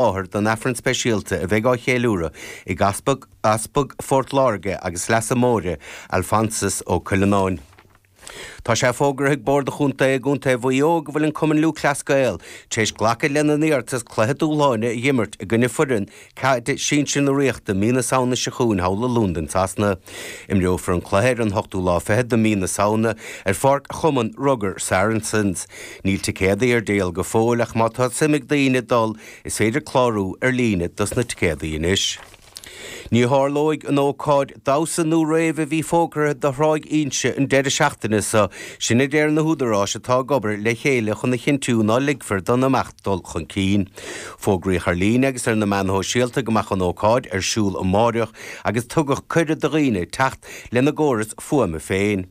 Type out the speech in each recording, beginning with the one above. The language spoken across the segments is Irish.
láthair don Aifreann speisialta a bheidh á cheiliúradh ag Easpag Phort Láirge agus Leasa Móire, Alphonsus Ó Cuilleanáin. Tá sé fógartha ag Bord an Chontae i gContae Mhaigh Eo go bhfuil an Cumann Lúthchleas Gael tar éis glacadh lena n-iarratas cluiche dúshláine a dh'imirt i gcoinne foireann caide sinsir na Ríochta mí na Samhna seo chugainn thall i Londain Shasana. Imreofar an cluiche ar an hochtú lá fichead de mí na Samhna ar pháirc Chumann Rugair Saracens. Níl ticéadaí ar díol go fóill ach má tá suim ag daoine dul is féidir clárú ar líne dos na ticéadaí anois. Ní tharlóidh an ócáid damhsa nó rave a bhí fógartha do Thráigh Inse an deireadh seachtaine so, sin a deir na húdaráis atá ag obair le chéile chun a chinntiú ná ligfear don imeacht dul chun cinn. Fógraíodh ar líne agus ar na meáin shóisialta go mbeadh an ócáid ar siúl amáireach agus tugadh cuireadh do dhaoine teacht lena gcóras fuaime féin.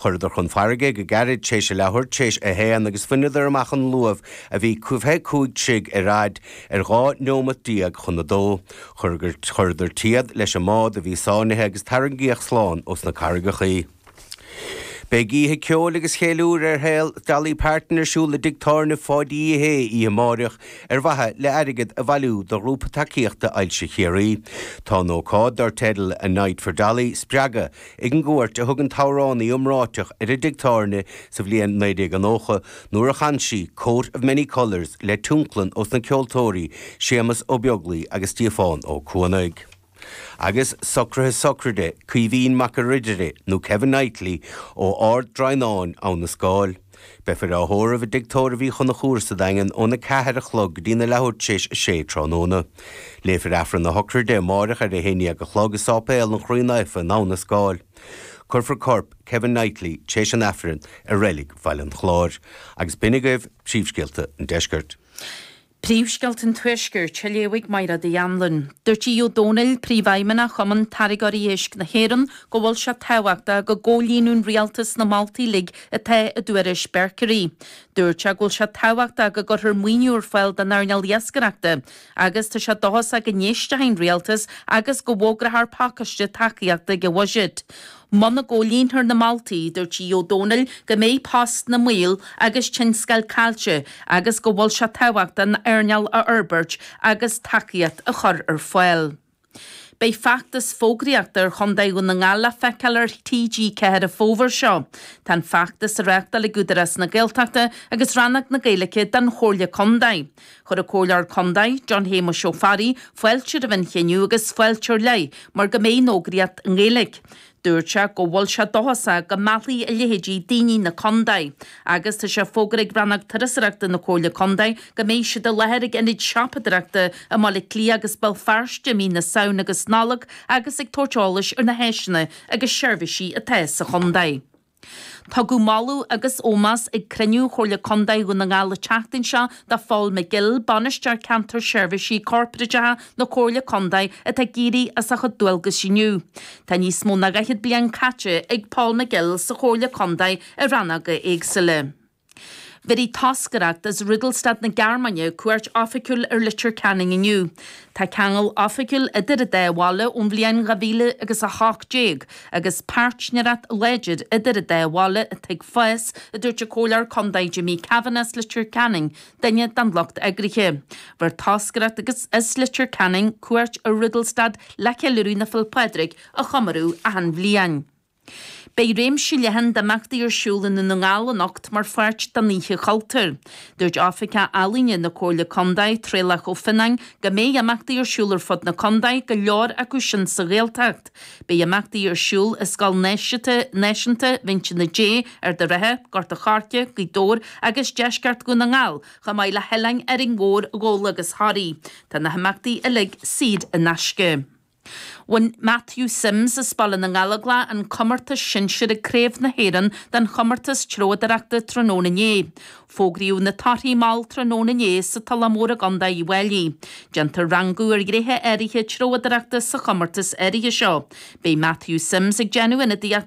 Chuireadar chun fairrge go gairid téis a leathuair téis a h-aon agus bhaineadar amach an luamh a bhí caoga cúig troigh ar fhaid ar dhá neomat déag chun a dó. Chuireadar téad leis an mbád a bhí sáinnithe agus tarraingíodh slán ós na carraigeacha í. Béidh oíche cheoil agus cheiliúir ar shaol Dolly Parton ar siúl i dtigh tábhairne Pháidí Uí Shé oíche máireach ar mhaithe le airgead a bhailiú do ghrúpa tacaíochta ailse Chiarraí. Tá an ócáid, dár teideal A Night for Dolly, spreagtha, Ag an gcuairt a thug an t-amhránaí iomráiteach ar an dtigh tábhairne sa bhliain 1990 nuair a chan sí 'Coat of Many Colours' le tionlacan ós na ceoltóirí Séamus Ó Beaglaoich agus Stíofán Ó Cuanaigh agus socruithe sochraide Caoimhín Mac a' Ridire nó Kevin Knightley ó Ard Droighneáin Abha na Scáil. Beifear á thórramh i dTigh Tórraimh Uí Chonchúir sa Daingean ón 4 a chlog go dtí na leathuair tar éis a sé tráthnóna. Léifear Aifreann na hócáide amáireach ar a haon dhéag a chlog i Sáipéal an Chroí Naofa in Abha na Scáil. Cuirfear corp Kevin Knightley tar éis an Aifrinn i reilig Bhaile an Chláir. Agus b'in agaibh príomhscéalta an deiscirt. Príomhscéalta an Tuaiscirt, a léifidh Máire Uí Anluain. Dúirt Aodh Ó Domhnaill, Príomhfheidhmeannach Chumann Táirgeoirí Éisc na hÉireann, go bhfuil sé tábhachtach go gcomhlíonann an Rialtas na moltaí uilig atá i dtuairisc Berkery. Dúirt sé go bhfuil sé tábhachtach go gcuirfear maoiniú ar fáil don earnáil iascaireachta agus tá sé dóchasach go n-éistfidh an Rialtas agus go bhfógrafar pacáiste tacaíochta sa bhuiséad Muna gcomhlíontar na moltaí, dúirt Aodh Ó Domhnaill go mbeidh postanna i mbaol agus tionscail caillte agus go bhfuil sé tábhachtach an earnáil a fhorbairt agus tacaíocht a chur ar fáil. Beidh feachtas fógraíochta ar chontae Dhún na nGall le feiceáil ar TG4 an fómhar seo. Tá an feachtas á reáchtáil ag Údarás na Gaeltachta agus Rannóg na Gaeilge den Chomhairle Contae. Chuir an Comhairleoir Contae, John Shéamais Ó Fearraigh, fáilte roimh an chinneadh agus fáilte ar leith mar go mbeidh an fhógraíocht i nGaeilge. Dúirt sé go bhfuil sé dóchasach go meallfaidh a leithéidí daoine na contae agus tá sé fógartha ag Rannóg Turasóireachta na Comhairle Contae go mbeidh siad i láthair ag ionaid siopadóireachta i mBaile Átha Cliath agus Béal Feirste i mí na Samhna agus Nollag agus ag tabhairt eolais ar na háiseanna agus seirbhísí atá sa chontae. Tugadh moladh agus ómós ag cruinniú Chomhairle Contae Dhún na nGall an tseachtain seo do Phól McGill, Bainisteoir Ceantair Seirbhísí Corporáideacha na Comhairle Contae atá ag éirí as a chuid dualgas inniu. Tá níos mó ná dhaichead bliain caite ag Pól McGill sa Chomhairle Contae i rannóga éagsúla. Bheirfidh toscaireacht as Rudolstadt na Gearmáine cuairt oifigiúil ar Leitir Ceanainn inniu. Tá ceangal oifigiúil idir an dá bhaile ón bhliain dhá mhíle agus a hocht déag agus páirtnéireacht láidir idir an dá bhaile atá ag fás, a dúirt an Comhairleoir Contae Jimmy Kavanagh as Leitir Ceanainn, duine den lucht eagraithe. Bheir toscaireacht as Leitir Ceanainn cuairt ar Rudolstadt le ceiliúradh na Féile Pádraig a chomóradh achan bhliain. Beidh réimse leathan d'imeachtaí ar siúl i nDún na nGall anocht mar pháirt den Oíche Chultúir. Dúirt Oifigeach Ealaíne na Comhairle Contae, Traolach Ó Fionnáin, go mbeidh imeachtaí ar siúl ar fud na contae, go leor acu sin sa Ghaeltacht. Beidh imeachtaí ar siúl i Scoil Náisiúnta Mhín Tine Dé, Ard a' Rátha, Gort a' Choirce, Gaoth Dobhair agus deisceart Dhún na nGall, chomh maith le hoileáin Árainn Mhór, Ghabhla agus Thoraí. Tá na himeachtaí uilig saor in aisce. Bhain Matthew Simms as Baile na nGallóglach an comórtas sinsir ag Craobh na hÉireann den chomórtas treabhdóireachta tráthnóna inné. Fógraíodh na torthaí mall tráthnóna inné sa Tulach Mhór i gContae Uíbh Fhailí. Déantar rangú ar ghnéithe áirithe treabhdóireachta sa chomórtas áirithe seo. Beidh Matthew Simms ag déanamh ionadaíochta